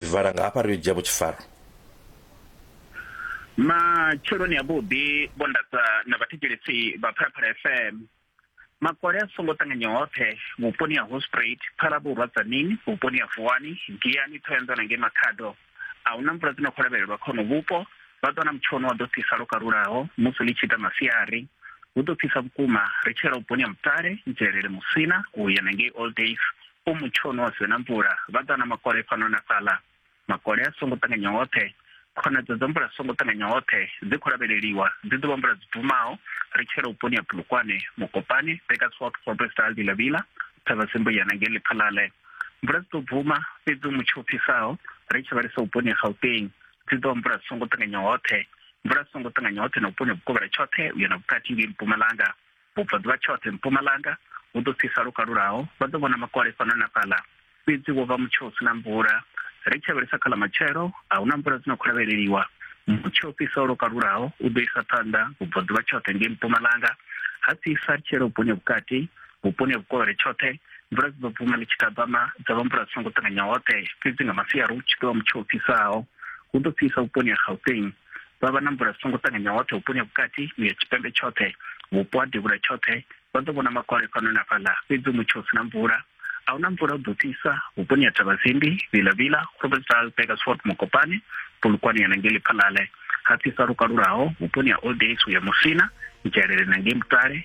Vhala nga hafha ri yo dzhia vhutshifharo. Matsheloni a vhuḓi vho ndatsa na vhathetshelesi vha Phalaphala FM. Makole a songo ṱanganywa hoṱhe vhuponi ha Hospruit, Phalavhurwa, Tzaneen, vhuponi ha Vuwani, Giyani, Thohoyanḓou na ngei Makhado a hu na mvula dzi no khou lavhelelwa kha hono vhupo. Vha ḓo wana mutsho wa ḓo fhisa lwo kalulaho musi ḽi tshi ita masiari. Hu ḓo fhisa vhukuma ri tshi yela vhuponi ha Mutale, Ntshelele, Musina u ya na ngei Old Days O mutshoni wa sina mvula, vha ḓa na makole fhano na fhaḽa. Makole a songo ṱanganya hoṱhe, khonadzeo dza mvula songo ṱanganya hoṱhe dzi khou lavheleliwa, dzi ḓo vha mvula dzi bvumaho, ri tshi yela vhuponi ha Polokwane, Mokopane, Bakersford, Forbesdal, Vila Vila, Vila, Thavhasimbuya na ngei Lephalale. Mvula dzi ḓo bvuma, fhedzi mutsho u fhisaho, ri tshi vhalisa vhuponi ha Gauteng, dzi ḓo vha mvula dzi songo ṱanganya hoṱhe, mvula dzi songo ṱanganya hoṱhe na vhuponi ha Vhukovhela tshoṱhe u ya na vhukati ngei Mpumalanga. Vhubvaḓuvha tshoṱhe mpumalanga hu ḓo fhisa lwo kalulaho, vha ḓo vhona makole fhano na fhaḽa. Fhedzi wo vha mutsho u si na mvula. Ri tshi lavhelesa kha ḽa matshelo, a hu na mvula dzi no khou lavheleliwa. Mutsho u fhisaho lwo kalulaho u ḓo isa phanḓa vhubvaḓuvha tshoṱhe ngei mpumalanga, ha fhisa ri tshi yela vhuponi ha vhukati, vhuponi ha vhukovhele tshoṱhe. Mvula dzi ḓo bvuma ḽi tshi tabama, dza vha mvula dzi songo ṱanganya hoṱhe, fhedzi nga masiari hu tshi ḓo vha mutsho u fhisaho. Hu ḓo fhisa vhuponi ha Gauteng. vha vha na mvula dzi songo ṱanganyaho hoṱhe vhuponi ha vhukati uya tshipembe tshoṱhe vhupo ha devhula tshoṱhe vha ḓo vhona makole fhano na fhaḽa fhedzi mutsho u si na mvula a huna mvula u ḓo tisa vhuponi ha thavazimbi vilavila grobelsdal begersford mokopane polukwane ya nangeli phalale ha fhisa lukalulaho vhuponi ha old days uya musina dzhelele nangei mutale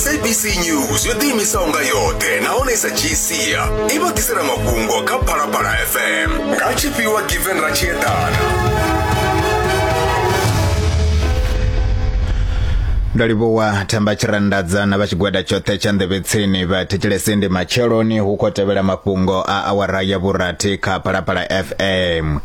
sabc news yo ḓiimisaho nga yoṱhe nahone sa gsia i vha ḓisela mafhungo kha phalaphala fm nga tshifhiwa given ra tshi eḓana ndo livhuwa thamba tshiranḓadza na vha tshigwada tshoṱhe tsha nḓevhetsini vha thetshelese ndi matsheloni hu khou tevhela mafhungo a awara ya vhurathi kha phalaphala fm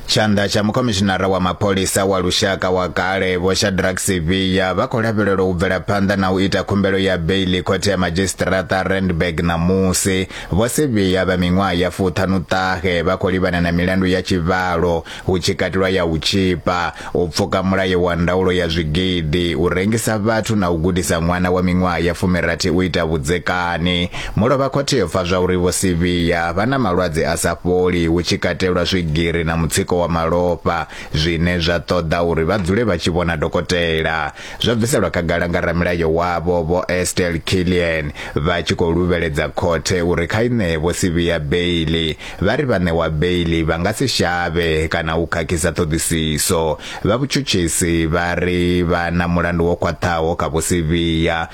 Tshanḓa tsha mukhomishinara wa mapholisa wa lushaka wa kale Vho Shadrack Sibiya vha khou lavhelelwa u bvela phanḓa na u ita khumbelo ya beiḽi khothe ya madzhisiṱiraṱa Randburg ṋamusi. Vho Sibiya vha miṅwaha ya fuṱhanu ṱahe vha khou livhana na milandu ya tshivhalo, hu tshi katelwa ya u tshipa, u pfuka mulayo wa ndaulo ya zwigidi, u rengisa vhathu na u gudisa ṅwana wa miṅwaha ya fumirathi u ita vhudzekani. Mulovha khothe yo pfa zwauri Vho Sibiya vha na malwadze a sa fholi hu tshi katelwa swigiri na mutsiko wa malofha zwine zwa ṱoḓa uri vha dzule vha tshi vhona dokotela. Zwo bviselwa khagala nga ramilayo wavho Vho Estelle Killian vha tshi khou luvheledza khothe uri kha i ṋee Vho Sibiya beili. Vha ri vha ṋewa beili vha nga si shavhe kana u khakhisa ṱhoḓisiso. Vha vhutshutshisi vha ri vha na mulandu wo khwaṱhaho kha Vho Sibiya.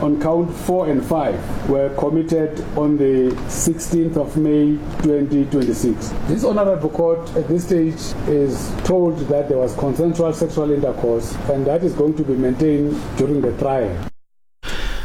on count 4 and 5 were committed on the 16th of May 2026. This honorable court at this stage is told that there was consensual sexual intercourse and that is going to be maintained during the trial.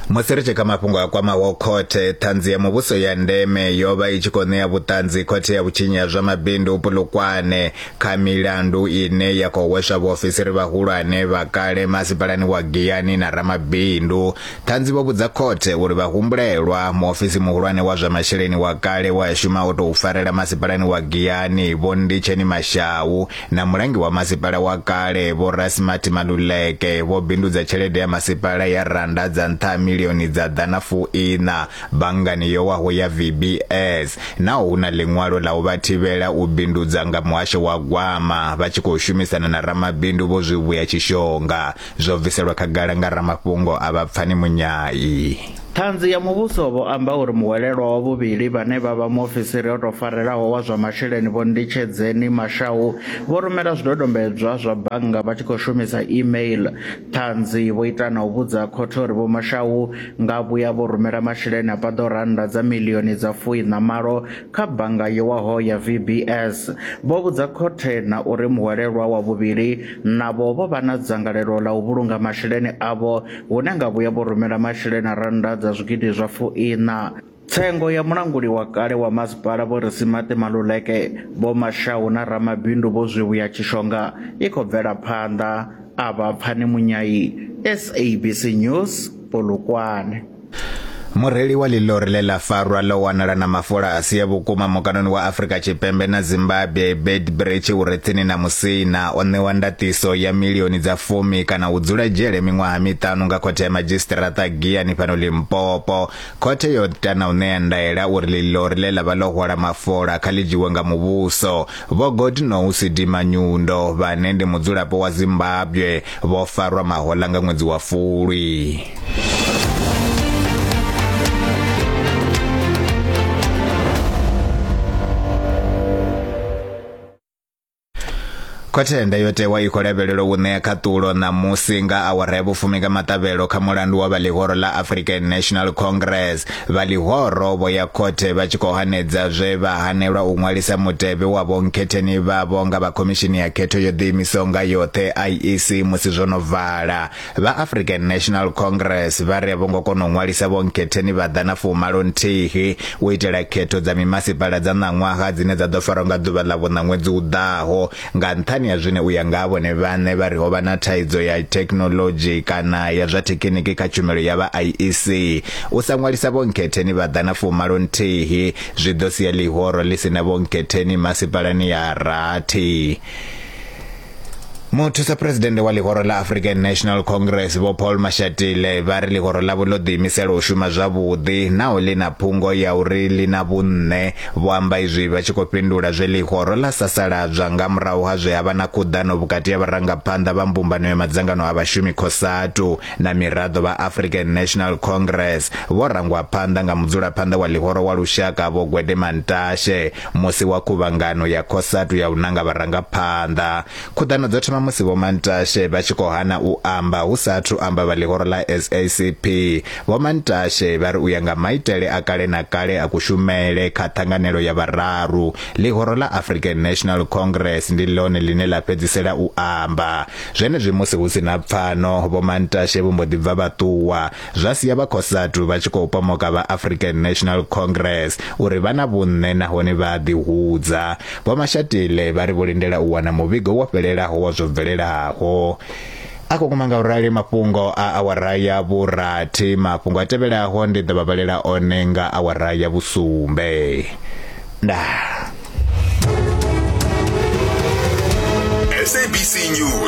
musi ri tshi kha mafhungo a kwamaho khothe ṱhanzi ya muvhuso ya ndeme yo vha i tshi khou ṋea vhuṱanzi khothe ya vhutshinyi ha zwa mabindu pulukwane kha milandu ine ya khou hweswa vhaofisiri vhahulwane vha kale masipalani wa Giyani na ramabindu ṱhanzi vho vhudza khothe uri vha humbulelwa muofisi muhulwane wa zwa masheleni wa kale wa shuma o tou farela masipalani wa Giyani vho Nditsheni Mashau na mulangi wa masipala wa kale vho Rasmart Maluleke vho bindudza tshelede ya masipala ya randa dza nṱha milioni dza ḓana fuiṋa Banngani yo waho ya VBS, naho hu na ḽiṅwalo ḽa u vha thivhela u bindudza nga muhasho wa gwama vha tshi khou shumisana na ramabindu Vho Zwivhuya Tshishonga, zwo bviselwa khagala nga ramafhungo avha Pfani Munyai. Ṱhanzi ya Muvhuso vho amba uri muhwelelwa wa vhuvhili vhane vha vha muofisiri o tou farelaho wa zwa masheleni Vho Nditshedzeni Mashau vho rumela zwidodombedzwa zwa bannga vha tshi khou shumisa e-mail. Ṱhanzi vho ita na u vhudza khothe uri Vho Mashau nga vhuya vho rumela masheleni a paḓaho rannda dza miḽioni dza fuiṋa na malo kha bannga yo waho ya VBS. Vho vhudza khothe na uri muhwelelwa wa vhuvhili navho vho vha na dzangalelo ḽa u vhulunga masheleni avho hune nga vhuya vho rumela masheleni a rannda dza zwigidi zwa fuiṋa. Tsengo ya mulanguli wa kale wa masipala Vho Risimaṱe Maluleke, Vho Mashau na ramabindu Vho Zwivhuya Tshishonga i khou bvela phanḓa. A vha Pfani Munyayi, SABC News, Polokwane. Mureili wa ḽilori ḽe ḽa farwa ḽo wanala na mafola a si a vhukuma mukanoni wa Afrika Tshipembe na Zimbabwe Beitbridge u re tsini na Musina o ṋewa ndaṱiso ya milioni dza fumi kana u dzula dzhele miṅwaha miṱanu nga khothe ya madzhisiṱiraṱa Giyani fhano Limpopo Khothe yo ita na u ṋea ndaela uri ḽiḽori ḽe ḽa vha ḽo hwala mafola kha ḽi dzhiwe nga muvhuso. Vho Godnousi Dimanyundo, vhane ndi mudzulapo wa Zimbabwe, vho farwa mahoḽa nga ṅwedzi wa Fulwi. Khothe ya ndayotewa i khou lavhelelwa u ṋea khaṱulo ṋamusi nga awara ya vhufumi nga maṱavhelo kha mulandu wa vha ḽihoro ḽa African National Congress. Vha ḽihoro vho ya khothe vha tshi khou hanedza zwe vha hanelwa u ṅwalisa mutevhe wa vhonkhetheni vhavho nga vha Khomishini ya Khetho yo Ḓiimisaho nga Yoṱhe, IEC, musi zwo no vala. Vha African National Congress vha ri a vho ngo kona u ṅwalisa vho nkhetheni vha ḓa na fumalo nthihi u itela khetho dza mimasipala dza ṋaṅwaha dzine dza ḓo farwa nga ḓuvha ḽa vhuṋa ṅwedzi u ḓaho nga nṱhani ha zwine u ya nga ha vhone vhaṋe vha ri ho vha na thaidzo ya thekhinolodzhi kana ya zwa thekiniki kha tshumelo ya vha IEC u sa ṅwalisa vho nkhetheni vha ḓa na fumalo nthihi zwi ḓo sia ḽihoro ḽi si na vho nkhetheni masipalani ya rathi muthusa phuresidennde wa ḽihoro ḽa african national congress vho paul mashatile vha ri ḽihoro ḽavho ḽo ḓiimisela u shuma zwavhuḓi naho ḽi na phungo ya uri ḽi na vhunṋe vho amba izwi vha tshi khou fhindula zwe ḽihoro ḽa sasaladzwa nga murahu ha zwe ha vha na khuḓano vhukati ha vharangaphanḓa vha mbumbano ya madzangano a vhashumi cosatu na miraḓo vha african national congress vho rangwa phanḓa nga mudzulaphanḓa wa ḽihoro wa lushaka vho gwede mantashe Musi wa khuvhangano ya Cosatu ya u nanga vharangaphanḓa, khuḓano dzo thoma musi Vho Mantashe vha tshi khou hana u amba hu sa athu amba vha ḽihoro ḽa SACP. Vho Mantashe vha ri u ya nga maitele a kale na kale a kushumele kha ṱhanganelo ya vhararu, ḽihoro ḽa African National Congress ndi ḽone ḽine ḽa fhedzisela u amba. Zwenezwi musi hu si na pfano, Vho Mantashe vho mbo ḓi bva vha ṱuwa. zwa sia vha Cosatu vha tshi khou pomoka vha African National Congress uri vha na vhunṋe nahone vha a ḓihudza. Vho Mashatile vha ri vho lindela u wana muvhigo wo fhelelaho wa zwo bvelelaho. A khou guma nga u rali mafhungo a awara ya vhurathi. Mafhungo a tevhelaho ndi ḓo vha vhalela one nga awara ya vhusumbe. Ndaa. SABC News.